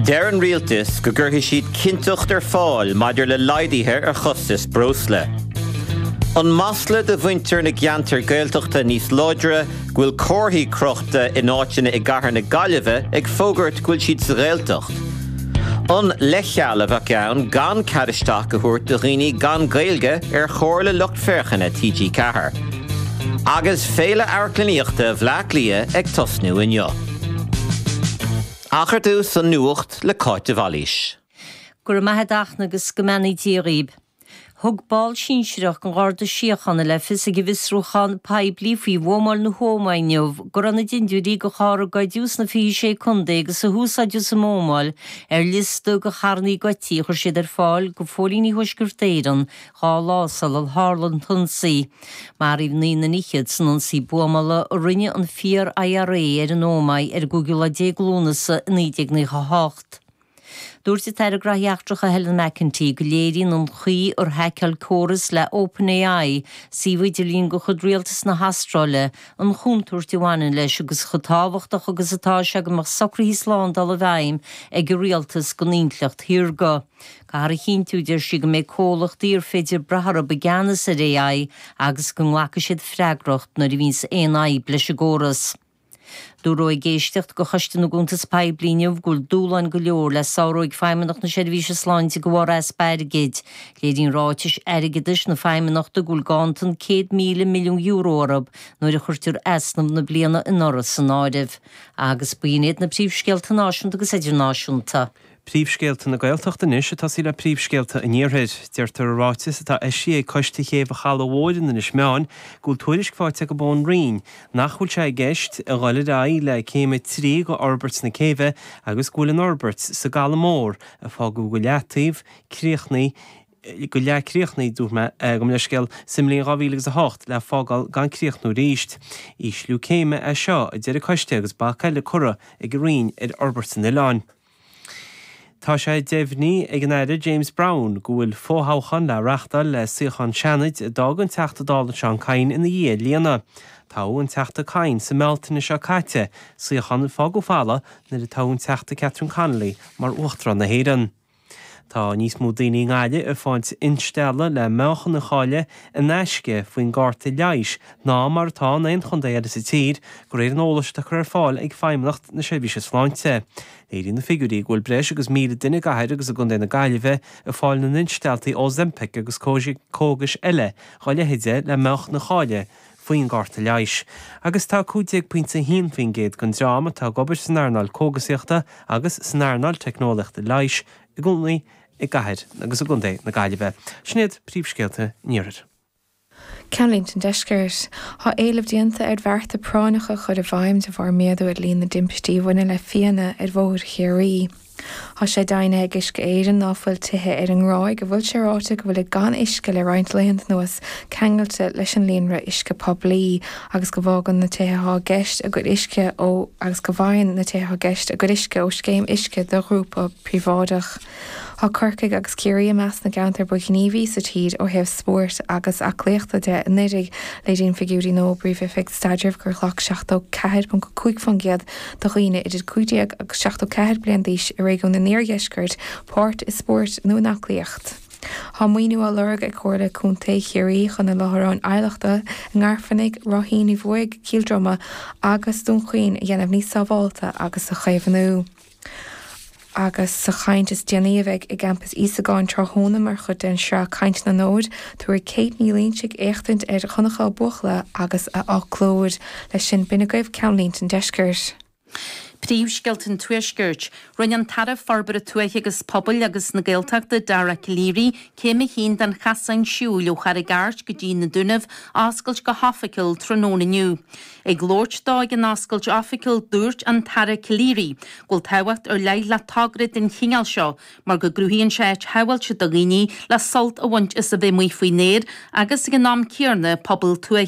Deir an rialtas go gcuirfidh siad cinnteacht ar fáil maidir le laghduithe ar chostais breosla. An masla do mhuintir na gceantar Gaeltachta níos láidre go bhfuil comharthaí crochta in áiteanna i gcathair na Gaillimhe ag fógairt go bhfuil siad sa Ghaeltacht. An leithcheal a bheadh ann gan cead isteach a thabhairt do dhaoine gan Gaeilge ar chomhairle lucht féachana TG4. Agus Féile Amharclannaíochta Bhleá Cliath ag tosnú inniu. Ach ar dtús an Nuacht le Cáit de Bhailís. Go raibh maith a'd Fhachtna agus go mbeannaí Dia dhaoib. Thug ball sinsireach den Gharda Síochána le fios ag an bhfiosrúchán poiblí faoi bhuamáil na hÓmaí inniu go raibh na dindiúirí de charr a goideadh sna 26 Contae agus a húsáideadh sa mbuamáil ar liosta de charrannaí goidtí a chuir siad ar fáil do Phóilíní Thuaisceart Éireann dhá lá sular tharla an t-ionsaí. Maraíodh naoi nduine fhichead san ionsaí buamála a rinne an Fíor-IRA ar an Ómaigh ar an gcúigiú lá déag Lúnasa i 1998. Dúirt an tAire Graithí Eachtracha Helen McEntee go léiríonn an chaoi ar haiceáil córas le OpenAI suíomh idirlín de chuid rialtas na hAstráile an chontúirt a bhaineann leis agus chomh tábhachtach agus atá sé go mbeadh socruithe slándála i bhfeidhm ag an rialtas don intleacht shaorga. Caithfear a chinntiú, a deir sí, go mbeidh comhlachtaí ar féidir brath orthu i gceannas ar AI agus go nglacfaidh siad freagracht nuair a bhíonns aon fhadhb leis an gcóras. Dúradh ag éisteacht de Choiste na gCuntas Poiblí inniu go bhfuil dúshláin go leor le sárú ag Feidhmeannacht na Seirbhíse Sláinte de bharr easpa airgid. Léiríonn ráitis airgeadais na Feidhmeannachta go bhfuil ganntan €100,000 milliún orthu nuair a chuirtear easnamh na bliana anuraidh san áireamh. Agus b'in iad na príomhscéalta náisiúnta agus idirnáisiúnta. Príomhscéalta na Gaeltachta anois ag tosaí le príomhscéalta an Iarthair. Deirtear i ráiteas atá eisithe ag Coiste Chéibh an Chalaidh Mhóir in Inis Meáin go bhfuil tuairisc faighte acu ón Roinn nach bhfuil sé i gceist a dhul ar aghaidh le Céim 3 de fhorbairt na céibhe agus go bhfuil an fhorbairt sa gCaladh Mór a fágadh go leataobh críochnaithe go leathchríochnaithe, gabh mo leithscéal, sa mbliain 2008 le fágáil gan críochnú arís. Ísliú céime é seo, a deir an Coiste agus bac eile curtha ag an Roinn ar fhorbairt an oileáin. Tá sé deimhnithe ag an Aire James Browne go bhfuil fothoghchán le reachtáil le suíochán Seanaid a d'fhág an Teachta Dála Seán Kyne ina dhiaidh a líonadh. Toghadh an Teachta Kyne sa mBealtaine seo caite, suíochán a fágadh folamh nuair a toghadh an Teachta Catherine Connolly mar Uachtarán na hÉireann. Tá níos mó daoine i nGaillimh ag fáilt instealladh le meáchan a chailleadh in aisce faoin gcárta leighis ná mar atá in aon chontae eile sa tír, de réir an eolais atá curtha ar fáil ag Feidhmeannacht na Seirbhíse Sláinte. Léiríonn na figiúirí go bhfuil breis agus 1,000 duine i gcathair agus i gcontae na Gaillimhe ag fáil na n-instealltaí Ozempic agus cógais eile dá leithéid le meáchan a chailleadh faoin gcárta leighis, agus tá 15.1% den dream atá ag obair san earnáil cógasaíochta agus san earnáil teicneolaíochta leighis ina gcónaí i gcathair agus i gcontae na Gaillimhe. Sin iad príomhscéalta an iarthair. Ceannlínte an Deiscirt, Tá éileamh déanta ar bhearta práinneacha a chur i bhfeidhm de bharr méadú ar líon na dtimpistí a bhaineann le fianna ar bhóithre Chiarraí. Tá sé deimhnithe ag Uisce Éireann ná fuil tithe ar an nGráig a bhfuil sé ráite go bhfuilid gan uisce le roinnt laethanta anuas ceangailte leis an líonra uisce poiblí agus go bhfaigheann na tithe atá i gceist a gcuid uisce ó scéim uisce do ghrúpa príobháideach. Tá Corcaigh agus Ciarraí i measc na gceantar ba ghníomhaí sa tír ó thaobh spóirt agus aclaíochta de anuraidh, léiríonn figiúirí ón bPríomh-Oifig Staidrimh gur ghlac 74.5% de dhaoine idir 15 agus 74 bliain d'aois i réigiún an Iardheiscirt páirt i spórt nó in aclaíocht. Tá maoiniú á lorg ag Comhairle Contae Chiarraí chun a láithreáin adhlachta i nGairfeanaigh, Ráithín Uí Bhuaigh, Cill Droma agus Dún Chaoin a dhéanamh níos sábháilte agus a chaomhnú. Agus sa chaint is déanaí a bheidh i gcampas Íosagáin tráthnóna mar chuid den sraith 'Caint na nÓg', tabharfaidh Kate Ní Loingsigh éachtaint ar Dhonncha Ó Buachalla agus a fhoclóir. Leis sin, b'in agaibh ceannlínte an deiscirt. Príomhscéalta an tuaiscirt. Rinne an tAire Forbartha Tuaithe agus Pobail agus na Gaeltachta Dara Calleary céim a haon den chosán siúil ó Charraig Airt go dtí na Dúnaibh a oscailt go hoifigiúil tráthnóna inniu. Ag labhairt dó ag an oscailt oifigiúil, dúirt an tAire Calleary go bhfuil tábhacht ar leith le togra den chineál seo mar go gcruthaíonn sé áit shábháilte do dhaoine le sult a bhaint as a bhith amuigh faoin aer agus, ag an am céanna, pobail tuaithe.